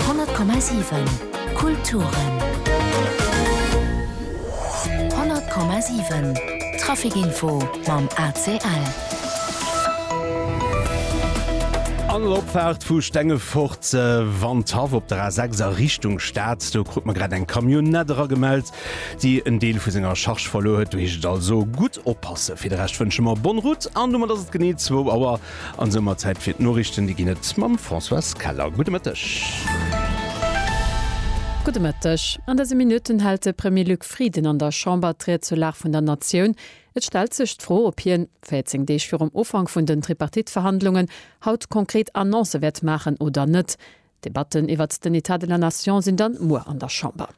100,7 Kulturen 100,7 Trafikinfo mam ACL. An der Opfaart vu Stengefort wann d'Haff op der A6 a Richtung Stad, do krut mer grad eng Camionnette eragemellt, déi en Deel vu senger Charge verluer huet. Do heescht et also gutt oppassen. Fir de Rescht wënsche mer Bonne route an domat ass et genee zwou Auer. An esou mar Zäit fir d'Noriichten, déi ginn et mam Françoise Keller. Gudde Mëtteg. Gudde Mëtteg. An dëse Minutten hält de Premier Luc Frieden an der Chamber d'Ried zur Lag vun der Natioun. Et stellt sech d'Fro, ob hien, 14 Deeg virum Ufank vun den Tripartite-Verhandlungen, haut konkret Annoncë wäert maachen oder net. D'Debatten iwwert den Etat de la Nation sinn dann muer an der Chamber.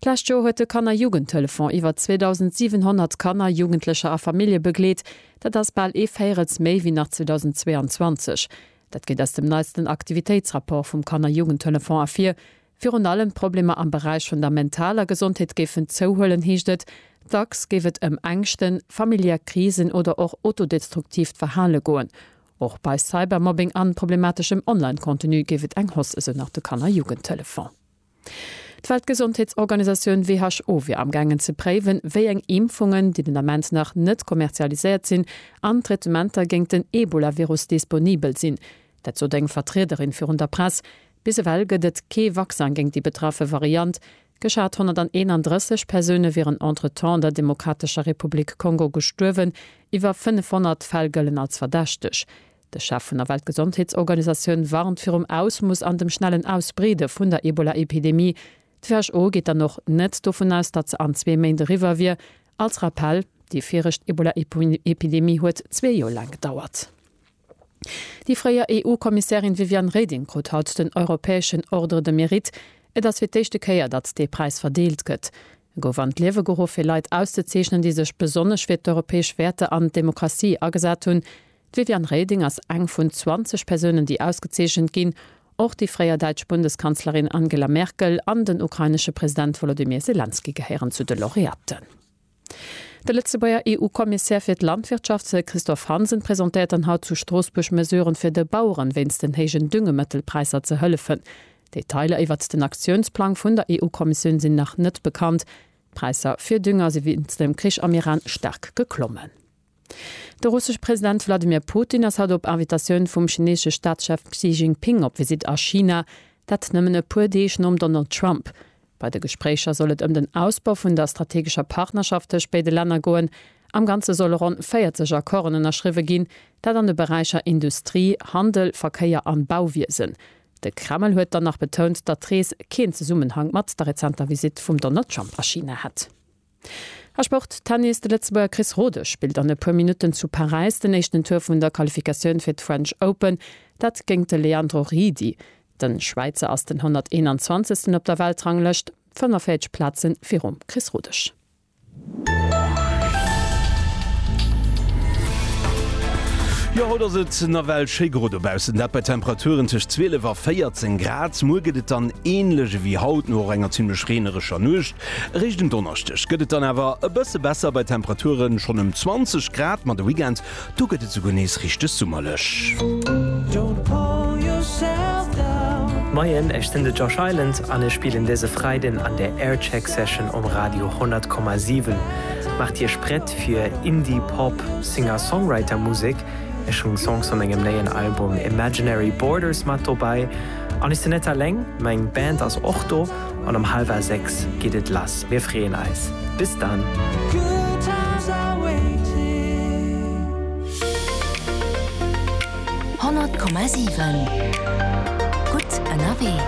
D'lescht Joer huet de Kanner-Jugendtelefon iwwer 2.700 Kanner, Jugendlecher a Famillje begleet. Dat ass bal ee Véierels méi wéi nach 2022. Dat geet aus dem neisten Aktivitéitsrapport vum Kanner-Jugendtelefon ervir. Virun allem d'Problemer am Beräich vun der mentaler Gesondheet géifen zouhuelen, heescht et. Dacks géif et ëm Ängschten, familiär Krisen oder och autodestruktiivt Verhale goen. Och bei Cybermobbing an problemateschem Online-Contenu géif et eng Hausse, esou nach de Kanner-Jugendtelefon. D'Weltgesondheetsorganisatioun who wier amgaangen ze préiwen, wéi eng Impfungen, déi den Ament nach net kommerzialiséiert sinn, an Traitementer géint den Ebola-Virus disponibel sinn. Dat sot eng Vertriederin virun der Press. Bis ewell gëtt et kee Vaccin géint déi betraffe Variant. Geschat 131 Persoune wieren entretemps an der Demokratescher Republik Kongo gestuerwen. Iwwer 500 Fäll gëllen als verdächteg. De Chef vun der Weltgesondheetsorganisatioun warnt virum Ausmoss an dem schnellen Ausbreede vun der Ebola-Epidemie. D'WHO geet dann och net dovun aus, datt se an zwee Méint eriwwer wier. Als Rappell, Déi virecht Ebola-Epidemie huet zwee Joer laang gedauert. Déi fréier EU-Kommissärin Viviane Reding krut haut den europäeschen Ordre de Mérite. Et ass fir d'éischte Kéier, datt dee Präis verdeelt gëtt. E gouf an d'Liewe geruff, fir Leit auszezeechnen, déi sech besonnesch fir d'europäesch Wäerter an d'Demokratie agesat hunn. D'Viviane Reding ass eng vun 20 Persounen, déi ausgezeechent ginn. Och déi fréier däitsch Bundeskanzlerin Angela Merkel an den ukrainesche President Wolodymyr Selenskyj gehéieren zu de Laureaten. De Lëtzebuerger EU-Kommissär fir d'Landwirtschaft Christophe Hansen presentéiert dann haut zu Stroossbuerg Mesuren, fir de Baueren wéinst den héijen Düngemëttelpräisser ze hëllefen. Detailer iwwert den Aktiounsplang vun der EU-Kommissioun sinn nach net bekannt. D'Präisser fir Dünger si wéinst dem Krich am Iran staark geklommen. De russesche President Wladimir Putin ass haut op Invitatioun vum chineesche Staatschef Xi Jinping op Visitt a China, dat nëmmen e puer Deeg nom Donald Trump. Bei de Gespréicher soll et ëm den Ausbau vun der strategescher Partnerschaft tëscht béide Länner goen. Am Ganze solle ronn 40 Accorden ënnerschriwwe ginn, dat an de Beräicher Industrie, Handel, Verkéier an Bauwiesen. De Kreml huet dann nach betount, datt d'Rees keen Zesummenhang mat der rezenter Visitt vum Donald Trump a China hätt. A Sport, Tennis, De Lëtzebuerger Chris Rodesch spillt an e puer Minutten zu Paräis den éischten Tour vun der Qualifikatioun fir d'French Open, dat géingt de Leandro Riedi. De Schwäizer ass den 121. op der Weltranglëscht, 45 Plaze virum Chris Rodesch. Jo, haut ass et nawell schéi gro dobaussen, dat bei Temperaturen tëscht 12 a 14 Grad. Muer gëtt et dann änlech ewéi haut, no och enger zimmlech reenerescher Nuecht. Eréischt en Donneschdeg gëtt et dann awer e bësse besser bei Temperaturen, schonn ëm 20 Grad, ma de Weekend, do gëtt et esouguer nees richteg summerlech. Moien, ech sinn de Josh Island an ech spillen dëse Freiden an der Aircheck Session um Radio 100,7. Maacht Iech prett fir Indie Pop Singer-Songwriter Musek. Ech hunn Songs vu mengem néien Album Imaginary Borders mat dobäi. An ech sinn net alleng, meng Band ass och do. An um halwer 6 geet et lass. Mir freeën eis. Bis dann! Honnert Komma siwen Gutt ënnerwee.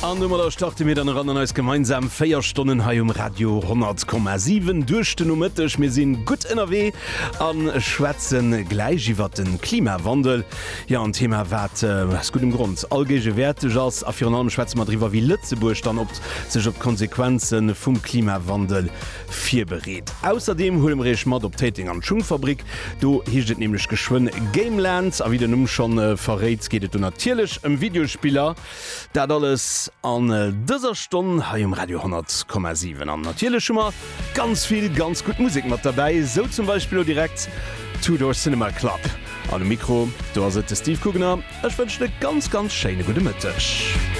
An domadder starte mir dann eran an eis gemeinsam 4 Stonnen hei um Radio 10,7 duerch den Nomëtteg. Mir sinn gutt ënnerwee a schwätzen gläich iwwert de Klimawandel. Jo, en Thema, wat aus guddem Grond allgéigewäerteg ass. A virun allem schwätze mer driwwer, wéi Lëtzebuerg dann op sech op d'Konsequenze vum Klimawandel virbereet. Ausserdeem huele mer Iech mat op Téiteng an d'Schungfabrik. Do heescht et nämlech geschwënn Gameland. A wéi den Numm schonn verréit, geet et do natierlech ëm Videospiller. Dat alles an dëser Stonn hei um Radio 10,7. An natierlech hu mer ganz vill ganz gutt Musek mat derbäi, esou zum Beispill lo direkt Two Door Cinema Club. An um Mikro, do ass et de Steve Kugener. Ech wënschen e ganz, ganz schéine gudde Mëtteg.